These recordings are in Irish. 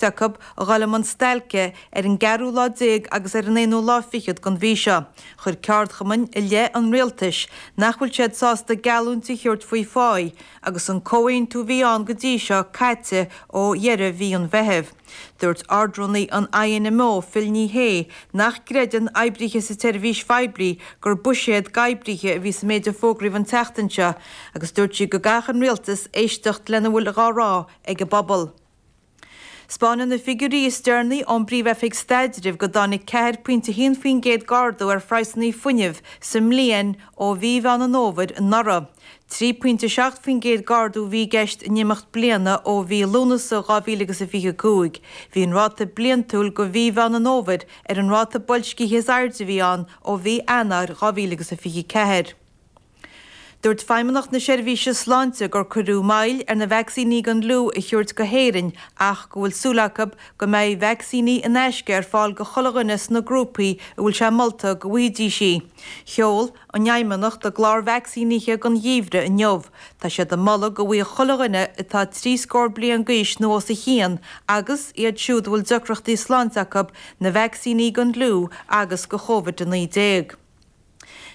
cuid acu a ghoil i mbun stailce ar an gceathrú lá déag agus ar an aonú lá fichead den mhí seo, chuir ceardchumainn i leith an rialtais nach bhfuil siad sásta geallúint a thabhairt faoi pháigh agus an comhaontú a bhí ann go dtí seo caite ó dheireadh mhí an Mheithimh. Dúirt Ard-Rúnaí an INMO, Phil Ní Sheaghdha, nach gcreideann oibrithe sa tseirbhís phoiblí gur buiséad d'oibrithe a bhí sa méid a fógraíodh an tseachtain seo agus dúirt sí go gcaithfeadh an rialtas éisteacht lena bhfuil dhá rá ag an bpobal. 'Spáineann na figiúirí is deirnaí ón bPríomh-Oifig Staidrimh go dtáinig ceathair puint a haon faoin gcéad d'ardú ar phraghsanna fuinnimh sa mbliain ó mhí Mheán Fómhair anuraidh. Trí puint a seacht faoin gcéad d'ardú a bhí i gceist in imeacht bliana ó mhí Lúnasa 2000 agus a fiche a cúig bhí an ráta bliantúil go mhí Mheán Fómhair ar an ráta boilscithe is airde a bhí ann ó mhí Eanáir 2000 agus a fiche ceathair Dúirt Feidhmeannacht na Seirbhíse Sláinte gur cuireadh moill ar na vacsaíní don fhliú a thabhairt go hÉirinn ach go bhfuil súil acu go mbeidh vacsaíní in aisce ar fáil do chuile dhuine sna grúpaí a bhfuil sé molta go bhfaighidís é. Sheol an Fheidhmeannacht a gclár vacsaínithe don gheimhreadh inniu. Tá siad ag moladh go bhfaigheadh chuile dhuine atá trí scór bliain d'aois nó os a chionn agus iad siúd a bhfuil deacrachtaí sláinte acu na vacsaíní don fhliú agus do Covid-19.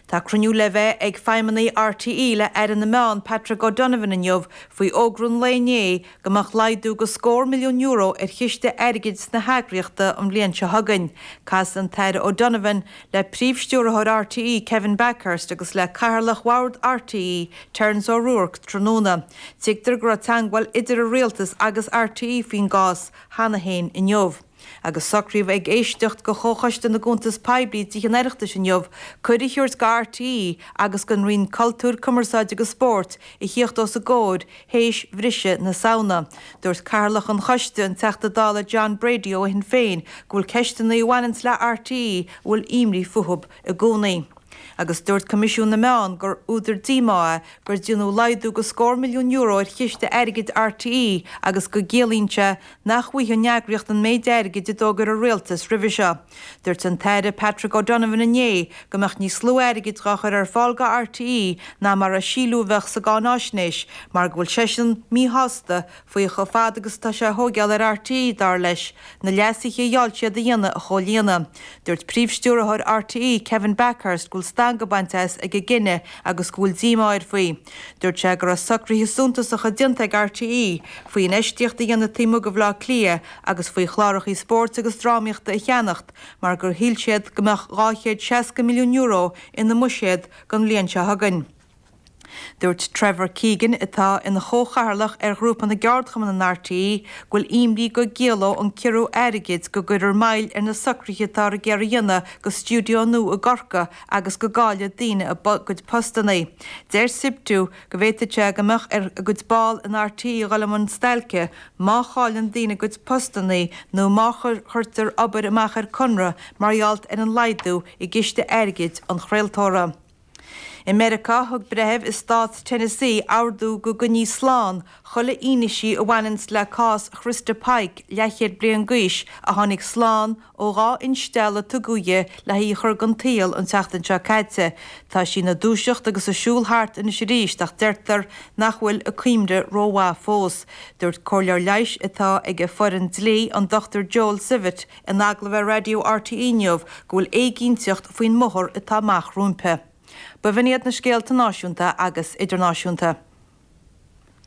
Tá cruinniú le bheith ag feidhmeannaigh RTÉ le hAire na Meán, Patrick O'Donovan inniu faoi fhógra an lae inné go mbeadh laghdú de scór milliún euro ar chiste airgid na heagraíochta an bhliain seo chugainn. Casfaidh an tAire O'Donovan le Príomh-Stiúrthóir RTÉ, Kevin Bakhurst agus le Cathaoirleach Bhord RTÉ, Terence O'Rourke tráthnóna. Tuigtear go raibh teagmháil idir an rialtas agus RTÉ faoin gcás cheana féin inniu. Agus socraíodh ag éisteacht de Chomhchoiste na gCuntas Poiblí i dTithe an Oireachtais inniu cuireadh a thabhairt do RTÉ agus don Roinn Cultúir, Cumarsáide agus Spóirt a thíocht os a gcomhair théis bhriseadh na Samhna. Dúirt Cathaoirleach an Choiste, an Teachta Dála John Brady ó Shinn Féin, go bhfuil ceisteanna a bhaineanns le RTÉ a bhfuil imní fúthu i gcónaí. Agus dúirt Coimisiún na Meán gur údar díomá é go ndearnadh laghdú de scór milliún euro ar chiste airgid RTÉ agus go gciallaíonn sé nach bhfaighidh an eagraíocht an méid airgid a d'fhógair an rialtas roimhe seo. Dúirt an tAire Patrick O'Donovan inné go mbeadh níos lú airgid dhá chur ar fáil do RTÉ ná mar a síleadh a bheadh sa gcáináisnéis mar go bhfuil seisean míshásta faoi chomh fada agus atá sé a thóigeáil ar RTÉ, dar leis, na leasuithe a gheall siad a dhéanamh a chomhlíonadh. Dúirt Príomh-Stiúrthóir RTÉ Kevin Bakhurst go bhfuil stangadh bainte as ag an gcinneadh agus go bhfuil díomá air faoi. Dúirt sé go raibh socruithe suntasacha déanta ag RTÉ faoi infheistíocht a dhéanamh taobh amuigh de Bhaile Átha Cliath agus faoi chlárachaí spóirt agus drámaíochta a cheannach mar gur shíl siad go mbeadh €260 milliún ina mbuiséad don bhliain seo chugainn. Dúirt Trevor Keegan, atá ina chomhchathaoirleach ar Ghrúpa na gCeardchumann in RTÉ, go bhfuil imní go gciallóidh an ciorrú airgid go gcuirfear moill ar na socruithe atáthar ag iarraidh a dhéanamh do stiúideo nua i gCorcaigh agus go gcaillfeadh daoine a gcuid postannaí. Deir Siptu go bhféadfadh sé go mbeadh ar a gcuid ball in RTÉ a dhul i mbun stailce má chailleann daoine a gcuid postannaí nó má chuirtear obair amach ar conradh mar gheall ar an laghdú i gciste airgid an chraoltóra. I Meiriceá, thug breitheamh i Stát Tennessee ordú go gcoinneofaí slán chuile fhianaise a bhaineanns le cás Christa Pike, leathchéad bliain d'aois a tháinig slán Ó dhá instealladh a tugadh di le hí a chur den tsaol an tseachtain seo caite, tá sí ina dúiseacht agus ag siúl thart anois arís ach deirtear nach bhfuil a cuimhne rómhaith fós. Dúirt comhairleoir leighis atá ag a foireann dlí, an Dr Joel Zivot, in agallamh ar raidió RTÉ inniu go bhfuil éiginnteacht faoin mbóthar atá amach roimpi. B'in iad na scéalta náisiúnta agus idirnáisiúnta.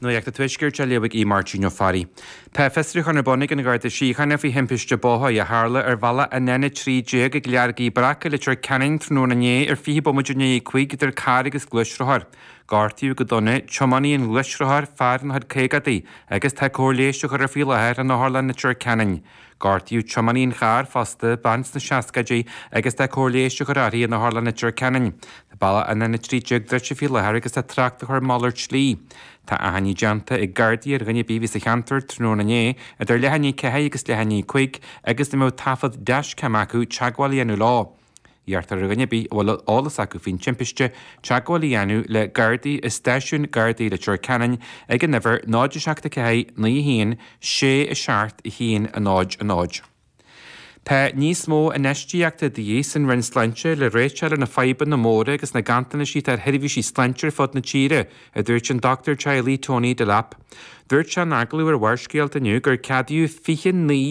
Nuacht an Tuaiscirt á léamh ag Aodh Máirtín Ó Fearraigh. Tá fiosrúchán ar bun ag an Gharda Síochána faoi thimpiste bóthair a tharla ar bhealach an N13 ag Leargaidh Bhreac i Leitir Ceanainn tráthnóna inné ar 20 bomaite i ndiaidh a cúig idir carr agus gluaisrothar. Gortaíodh go dona tiománaí an ghluaisrothair, fear ina chuid caogadaí, agus tá cóir leighis á chur air faoi láthair in Otharlann Leitir Ceanainn. Gortaíodh tiománaí an chairr fosta, bean sna seascaidí, agus tá cóir leighis á chur uirthi in Otharlann Leitir Ceanainn. Tá bealach an N13 druidte faoi láthair agus tá trácht á chur ar mhalairt slí. Tá achainí déanta ag Gardaí ar dhuine ar bith a bhí sa cheantar tráthnóna inné idir leath i ndiaidh a 4 agus leath i ndiaidh a 5 agus a mbeadh taifead dashcam acu teagmháil a dhéanamh leo. Iarrtar ar dhuine ar bith a bhfuil eolas acu faoin timpiste teagmháil a dhéanamh le Gardaí i Stáisiún Gardaí Leitir Ceanainn ag an uimhir 0 7 4 9 1 6 7 1 0 0. Tá níos mó infheistíochta de dhíth san Roinn Sláinte le réiteach a fháil ar na fadhbanna móra agus na ganntanais atá ar sheirbhísí sláinte ar fud na tíre, a dúirt an Dochtúir Teaghlaigh Tony Delap. Dúirt sé in agallamh ar Bharrscéalta inniu gur ceadaíodh 29